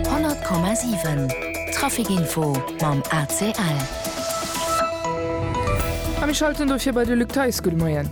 100,7 Trafic-Info mam ACL. A mir schalten dofir bei de Luc Theis. Gudde Moien.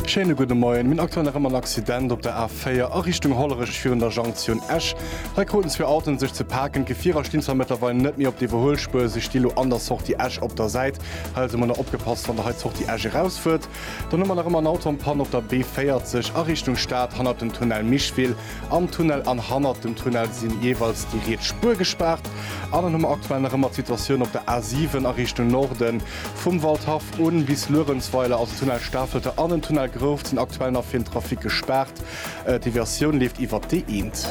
Schéine gudde Moien. Mir hunn aktuell nach ëmmer en Accident op der A4 a Richtung Hollerech virun der Junktioun Esch. Hei kruten zwee Autoen sech ze paken. D'Gefierer stinn zwar mëttlerweil net méi op der Iwwerhuelspuer, si sti lo an der Sortie Esch op der Säit. Hei also mol nach opgepasst, wann Der hei d'Sortie Esch erausfuert. Dann hu mer nach ëmmer en Auto an Panne op der B40 a Richtung Stad hannert dem Tunnel Micheville. am Tunnel an hannert dem Tunnel si jeeweils déi riets Spuer gespaart. An dann hu mer aktuell nach ëmmer d'Situatioun op der A7 a Richtung Norden. Vum Waldhaff u bis Luerenzweiler ass e Tunnel Stafelter an en Tunnel Grouft sinn aktuell nach fir den Trafic gespaart. D'Deviatioun leeft iwwert d'E1.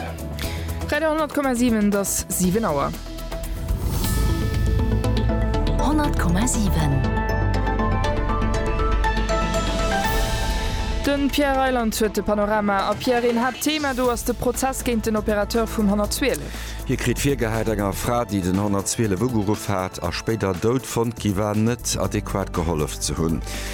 Radio 100,7 Et ass 7 Auer. Honnert Komma siwen. Den Pierre Reyland huet de Panorama. A Pierre, een haart Thema do ass de Prozess géint den Opérateur vum 112. Hie kritt virgehäit, enger Fra, déi den 112 ugeruff hat a spéider dout fonnt gi war, net adequat gehollef ze hunn.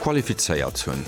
qualifizéiert hunn.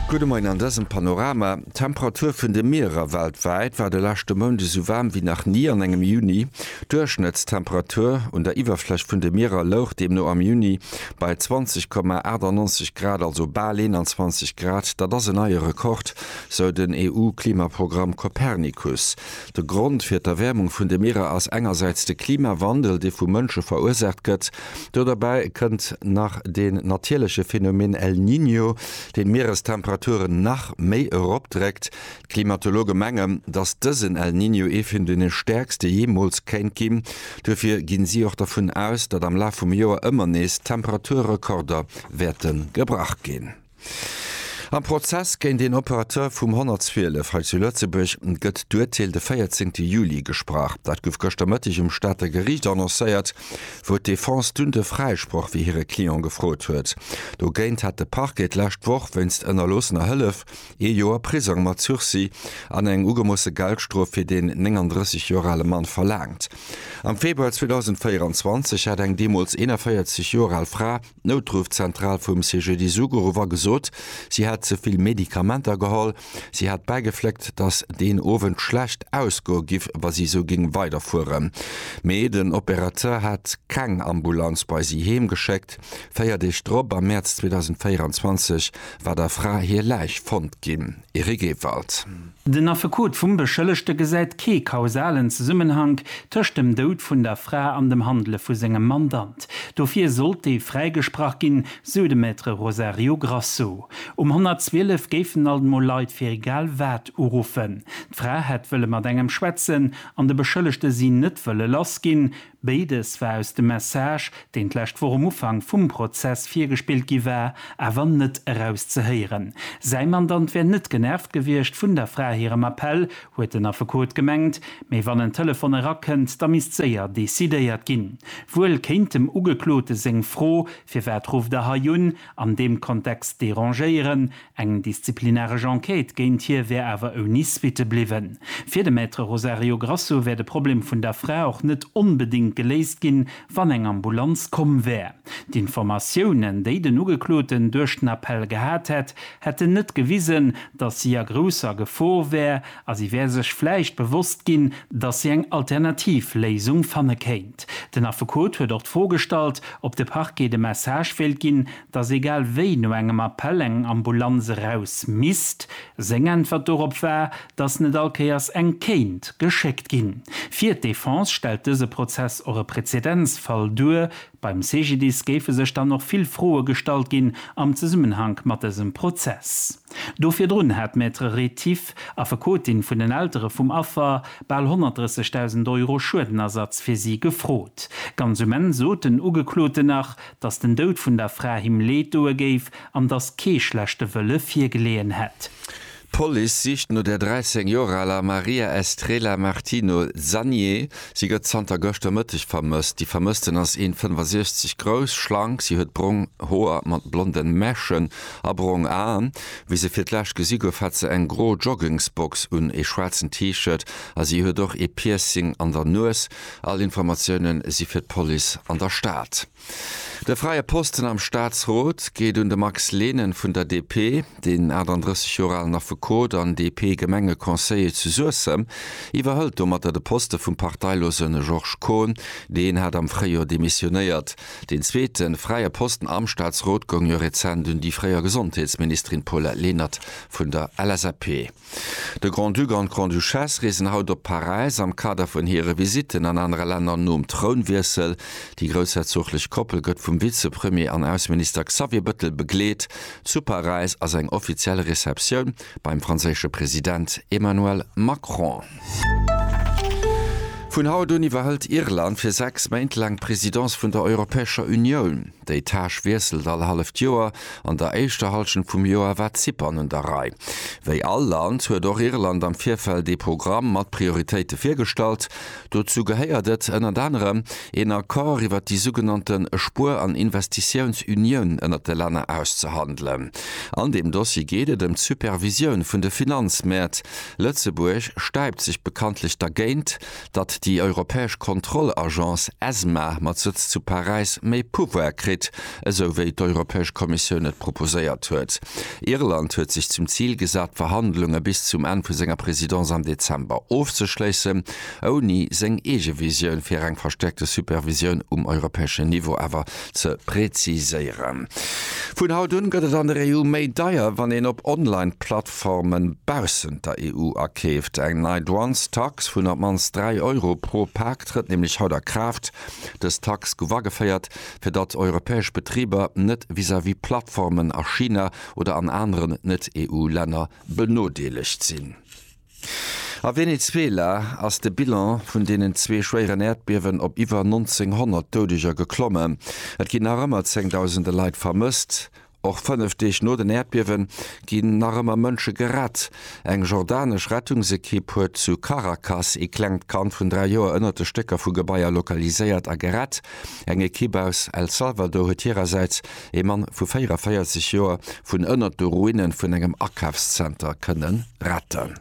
Gudde Moien, an dësem Panorama, D'Temperatur vun de Mierer weltwäit war de leschte Mount esou waarm wéi nach ni an engem Juni. D'Duerchschnëttstemperatur un der Iwwerfläch vun de Mierer louch deemno am Juni bei 20,98 Grad, also bal 21 Grad. Dat ass en neie Rekord, sou den EU-Klimaprogramm Copernicus. De Grond fir d'Erwäermung vun de Mierer ass engersäits de Klimawandel, dee vu Mënsche verursaacht gëtt, Do derbäi kënnt nach deen natierleche Phenomen El Niño, deen d'Mierestemperaturen nach méi eropdréckt. D'Klimatologe mengen, datt dësen El Niño ee vun deene stäerkste jeemools kéint ginn. Duerfir ginn si och dervun aus, datt am Laf vum Joer ëmmer nees Temperaturrekorder wäerte gebrach ginn. Am Prozess géint een Operateur vum 112 hei zu Lëtzebuerg gëtt d'Urteel de 14 Juli gesprach. Dat gouf gëschter Mëtteg um Stater Geriicht annoncéiert, wou d'Defense dunn de Fräisproch fir hire Client gefrot huet. Dogéint hat de Parquet d'lescht Woch wéinst ënnerloossener Hëllef ee Joer Prisong mat Sursis an eng ugemoosse Geldstrof fir deen 39 Joer ale Mann verlaangt. Am Februar 2024 hat eng deemools 41 Joer al Fra, D'Noutruffzentral vum CGDIS ugeruff a gesot, si hätt ze vill Medikamenter geholl. Si hätt bäigefléckt, datt deen Owend schlecht ausgoe giff, wa si esou géing weiderfueren. Mee den Opérateur hätt keng Ambulanz bei si heem geschéckt. Véier Deeg drop, am Mäerz 2024, war der Fra hir Läich fonnt ginn. Eric Ewald. Den Affekot vum Beschëllegte gesäit kee kausalen Zesummenhank tëscht dem Doud vun der Fra an dem Handele vu sengem Mandant. Dofir sollt dee fräigesprach ginn, sou de Maître Rosario Grasso. Um 112 géifen alt mol Leit fir egal wat uruffen. D'Fra hätt wëlle mat engem schwätzen an de Beschëllegte si net wëlle lass ginn, Béides war aus dem Message, deen d'lescht Woch um Ufank vum Prozess virgespillt gi war, awer net erauszehéieren. Säi Mandant wär net genervt gewiescht vun der Fra hirem Appell, huet den Affekot gemengt. Mee wann en Telefon erakënnt, da misst séier decidéiert ginn. Wuel kéint dem Ugeklote seng Fro, Firwat rufft Der hei un? an deem Kontext derangéieren, Eng disziplinaresch Enquête géint hie wär awer ouni Suitte bliwwen. Fir de Maître Rosario Grasso wär de Problem vun der Fra och net onbedéngt geléist ginn, wann eng Ambulanz komm wär. D'Informatiounen, déi den Ugekloten duerch den Appell gehat hätt, hätten net gewisen, datt si a grousser Gefor wär a si wär sech vläicht bewosst ginn, datt si eng alternativ Léisung fanne kéint. Den Affekot huet och d'Fro gestallt, ob de Parquet de Message wéilt ginn, dass egal wéi no engem Appell eng Ambulanz eraus misst. Seng Äntwert dorop war, dass net all Kéiers eng kéint geschéckt ginn. Fir d'Defense stellt dëse Prozess och e Prezedenzfall duer. Beim CGDIS géife sech dann och vill Froe gestallt ginn am Zesummenhank mat dësem Prozess. Do virdrun hat d'Maître Rétif, Affekotin vun den Eltere vum Affer, bal 130.000 Euro Schuedenersatz fir si gefrot. Ganz um Enn sot den Ugekloten nach, dass den Doud vun der Fra him Leed doe géif an dass kee schlechte Wëlle virgeleeën hätt. D'Police sicht no der 13 Joer aler Maria Estrela Martino Zanié. Si gëtt zanter gëschter Mëtteg vermësst. Déi Vermëssten ass een 65 grouss, schlank. Si huet brong Hoer mat blonden Mäschen a brong Aen. Wéi se fir d'lescht gesi gouf, hat se eng gro Joggingsbox un, ee schwaarzen T-Shirt a si huet och ee Piercing an der Nues. All Informatiounen si fir d'Police an der Stad. De fräie Posten am Staatsrot geet un de Max Lehnen vun der DP. Den 38 Joer alen Affekot an DP-Gemengeconseiller zu Suessem iwwerhëlt domatter de Poste vum parteilose Georges Kohn. Deen hat am Fréijoer demissionéiert. Deen zweete fräie Posten am Staatsrot goung jo rezent un déi fréier Gesondheetsministerin Paulette Lenert vun der LSAP. De Grand-Duc an d'Grande-Duchesse reesen haut op Paräis am Kader vun hire Visitten an anere Länner nom Trounwiessel. Déi groussherzooglech Koppel gëtt vum Vizepremier an Ausseminister Xavier Bëttel begleet. Zu Paräis ass eng offiziell Receptioun beim franséische President Emmanuel Macron. Vun haut un iwwerhëlt Irland fir 6 Méint laang d'Presidence vun der Europäescher Unioun. Déi Tâche wiesselt all halleft Joer. An der éischter Hallschent vum Joer war Zypern un der Rei. Wéi all Land huet och Irland am Virfeld ee Programm mat Prioritéite virgestallt. Dozou gehéiert et ënnert anerem, een Accord iwwert déi sougenannte Spuer an Investitiounsunioun ënnert de Länner auszehandelen. An deem Dossier geet et ëm d'Supervisioun vun de Finanzmäert. Lëtzebuerg stäipt sech bekanntlech dergéint, datt déi europäesch Kontrollagence ESMA mat Sëtz zu Paräis méi Pouvoire kritt, esou wéi d'Europäesch Kommissioun et proposéiert huet. Irland huet sech zum Zil gesat, d'Verhandlunge bis zum Enn vu senger Présidence am Dezember ofzeschléissen, ouni seng eege Visioun fir eng verstäerkte Supervisioun um europäeschen Niveau awer ze präziséieren. Vun haut un gëtt et an der EU méi deier, wann een op Online-Plattformen baussent der EU akeeft. Eng nei Douanestax vun op mannst 3 Euro pro Pak trëtt nämlech haut a Kraaft. Dës Tax gouf ageféiert, fir datt europäesch Betriber net vis-à-vis Plattformen a China oder an aneren Net-EU-Länner benodeelegt sinn. A Venezuela ass de Bilan vun deenen zwee schwéieren Äerdbiewen op iwwer 1900 Doudeger geklommen. Et ginn nach ëmmer zéngdausende Leit vermësst. Och fënnef Deeg no den Äerdbiewe ginn nach ëmmer Mënsche gerett. Eng jordanesch Rettungsekipp huet zu Caracas ee klengt Kand vun dräi Joer ënnert de Stécker vu Gebaier lokaliséiert a gerett. Eng Ekipp aus El Salvador huet hirersäits Ee Mann vu 44 Joer vun ënnert de Ruine vun engem Akafszenter kënne retten.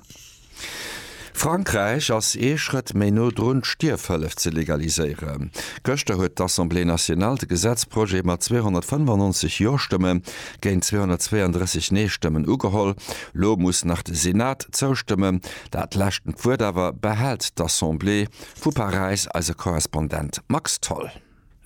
Frankräich ass ee Schrëtt méi no drun, d'Stierfhëllef ze legaliséieren. Gëschter huet d'Assemblée nationale de Gesetzprojet mat 295 Jo-Stëmme géint 232 Nee-Stëmmen ugeholl. Lo muss nach de Senat zoustëmmen. Dat leschtend Wuert awer behält d'Assemblée. Vu Paräis eise Korrespondent Max Tholl.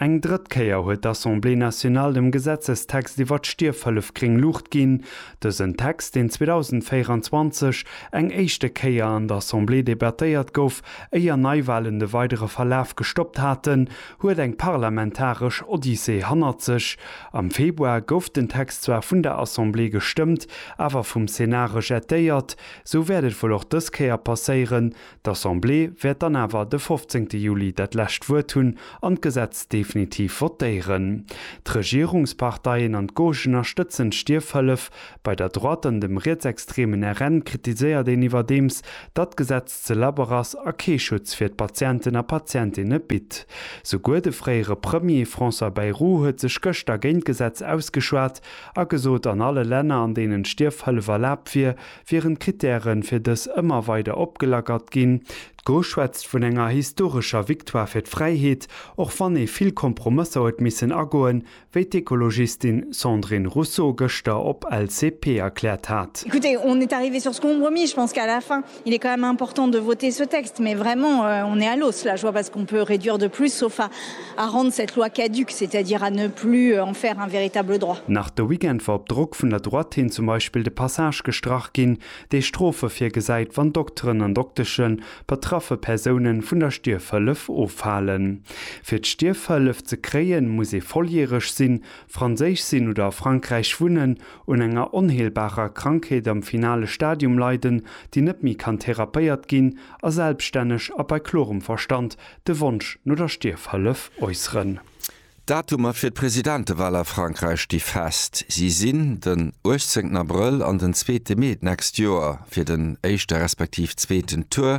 Eng drëtt Kéier huet d'Assemblée nationale dem Gesetzestext iwwer d'Stierfhëllef gréng Luucht ginn. Dësen Text, deen 2024 eng éischte Kéier an der Assemblée debattéiert gouf, éier Neiwalen de weidere Verlaf gestoppt haten, huet eng parlamentaresch Odyssee hannert sech. Am Februar gouf den Text zwar vun der Assemblée gestëmmt, awer vum Senat rejetéiert. Sou wäert et wuel och dës Kéier passéieren, D'Assemblée wäert dann awer de 15 Juli dat lescht Wuert hunn an d'Gesetz definitiv votéieren. D'Regierungsparteien an d'Gauche ënnerstëtzen d'Stierfhëllef bei der Droite an dem rietsextremen RN kritiséiert een iwwerdeems, datt d'Gesetz ze labber ass a kee Schutz fir d'Patienten a Patientinne bitt. Souguer de fréiere Premier François Bayrou huet sech gëschter géint d'Gesetz ausgeschwat a gesot, an alle Länner, an deenen d'Stierfhëllef erlaabt wier, Wieren d'Krittären fir dës ëmmer weider opgelackert ginn. D'Go schwätzt vun enger historescher Victoire fir d'Fräiheet, och wann ee vill Kompromësser huet missen agoen, wéi d'Ekologistin Sandrine Rousseau gëschter op LCP erkläert hat. à rendre cette loi caduque, c'est-à-dire à ne plus en faire un véritable droit. Nach de Weekend war op Drock vun der Droite hin zum Beispill de Passage gestrach ginn, dee Strofe virgesäit, wann Dokteren an Dokteschen betraffe Persoune vun der Stierfhëllef ofhalen. Fir d'Stierfhëllef ze kréien, muss ee volljäreg sinn, Franséisch sinn oder a Frankräich wunnen, un enger onheelbarer Krankheet am finale Stadium leiden, déi net méi kann therapéiert ginn a selbststänneg a bei klorem Verstand de Wonsch no der Stierfhëllef äusseren. D'Datumer fir d'Presidentewahl a Frankräich sti fest. Si sinn den 18 Abrëll an den zweete Mee d'nächst Joer. Fir den éischte respektiv zweeten Tour,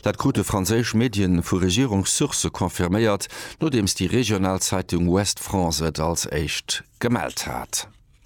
dat krute franséisch Medie vu Regierungssourcë confirméiert, nodeems déi regional Zeitung Ouest France et als éischt gemellt hat.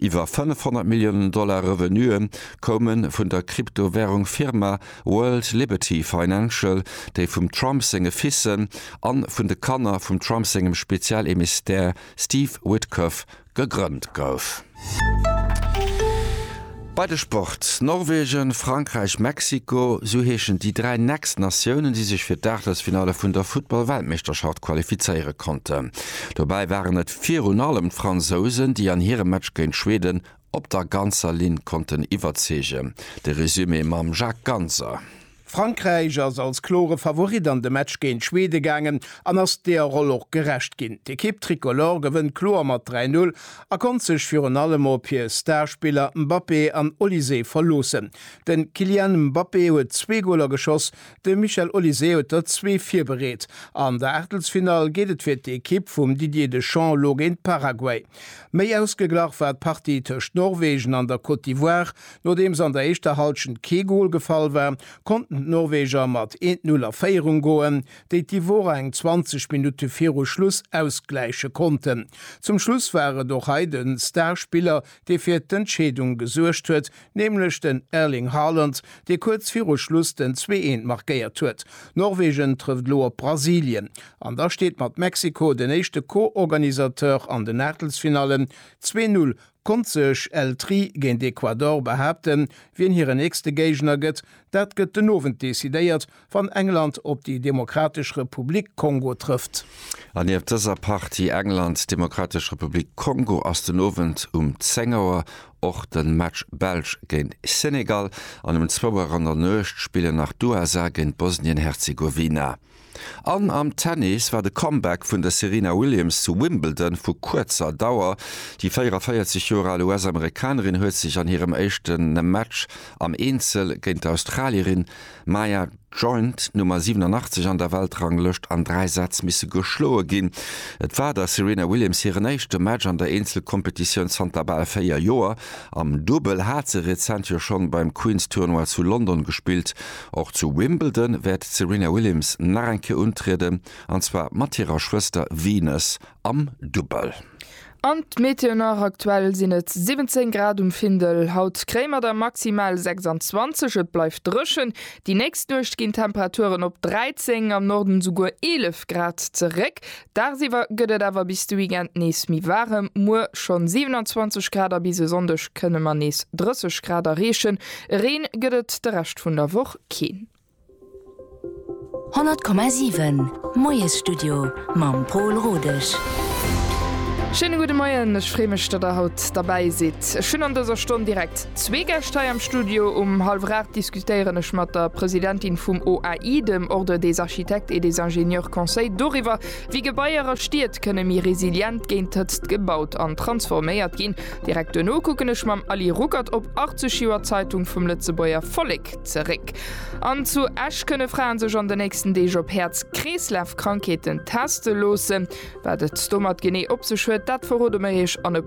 Iwwer 500 Milliounen Dollar Revenue koume vun der Kryptowärung Firma World Liberty Financial, déi vum Trump senge Fissen a vun de Kanner vum Trump sengem Spezialemissaire Steve Witkoff gegrënnt gouf. Bei de Sport, Norwegen, Frankräich, Mexiko, sou heeschen déi dräi nächst Natiounen, déi sech fir d'Aachtelsfinalle vun der Futtball-Weltmeeschterschaft qualifizéiere konnten. Dobäi waren et virun allem d'Fransousen, déi an hirem Match géint Schweden op der ganzer Linn konnten iwwerzeegen. De Resumé mam Jacques Ganser. Frankräich ass als klore Favorit an de Match géint Schweden gaangen an ass deeër Roll och gerecht ginn. D'Ekipp Tricolore gewënnt kloer mat 3, 0 a konnt sech virun allem op hir Starspiller Mbappé an Olysée verloossen. De Kylian Mbappé huet zwee Goler geschoss, de Michel Olysée huet der zwee virbereet. An der Aachtelsfinall geet et fir d'Ekipp vum Didier Deschamps elo géint Paraguay. Méi ausgeglach war d'Partie tëscht Norwegen an der Côte d'Ivoire, Nodeems an der éischter Halschent kee Gol gefall war, konnten d'Norweger mat 1-0 a Féierung goen, déi d'Ivorer eng 20 Minutte viru Schluss ausgläiche konnten. Zum Schluss war et och hei de Star-Spiller, dee fir d'Entscheedung gesuergt huet, nämlech den Erling Haaland, dee kuerz viru Schluss den 2-1 markéiert huet. Norwegen trëfft elo op Brasilien an da steet mat Mexiko den éischte Co-Organisateur an den Aachtelsfinallen. 2-0 Konnt sech El Tri géint Ecuador behaapten. Wien hire nächste Géigner gëtt, dat gëtt den Owend decidéiert, wann England op déi Demokratesch Republik Kongo trëfft. An nieft dëser Partie England, Demokratesch Republik Kongo ass den Owend um 10 Auer och de Match Belsch géint Senegal an um zwou Auer an der Nuecht spillen nach d'USA géint Bosnien-Herzegowina. An am Tennis war de Comeback vun der Serena Williams zu Wimbledon vu kuerzer Dauer. Déi 44 Joer al US-Amerikanerin huet sech an hirem éischte Match am Eenzel géint d'Australierin Maya Joint, Nummer 87 an der Weltranglëscht, an dräi Sätz misse geschloe ginn. Et war der Serena Williams hiren éischte Match an der Eenzelkompetitioun zanter bal véier Joer. Am Dubbel hat se rezent jo schonn beim Queen's Tournoi zu London gespillt. Och zu Wimbledon wäert d'Serena Williams nach eng Kéier untrieden, an zwar mat hirer Schwëster Venus am Dubbel. An d'Meteo nach, Aktuell sinn et 17 Grad um Findel, haut Kréimer da maximal 26. Et bleift dréchen, déi nächst Nuecht ginn d'Temperaturen op 13, am Norden esouguer 11 Grad zeréck. Dagsiwwer gëtt et awer bis de Weekend nees méi waarem, muer schonn 27 Grad a bis e Sonndeg kënne mer nees 30 Grad erreechen. Reen gëtt et de Rescht vun der Woch keen. 100,7 Moiesstudio mam Pol Rodesch. Schéine gudde Moien, ech freeë mech, datt der haut derbäi sidd. Ech hunn an dëser Stonn direkt. Zwee Gäscht hei am Studio. Um hallwer 8 diskutéieren ech mat der Presidentin vum OAI, dem Ordre des Architectes et des Ingénieurs Conseils, doriwwer, wéi Gebaier a Stied kënne méi resilient géint d'Hëtzt gebaut an transforméiert ginn. Direkt duerno kucken ech mam Aly Ruckert op 80 Joer Zeitung vum Lëtzebuerger Vollek zeréck. An zu Esch kënne Fraen sech an den nächsten Deeg op Häerz-Kreeslaf-Krankheeten teste loossen. Wat et domat genee op sech huet, dat verrode mer Iech an e.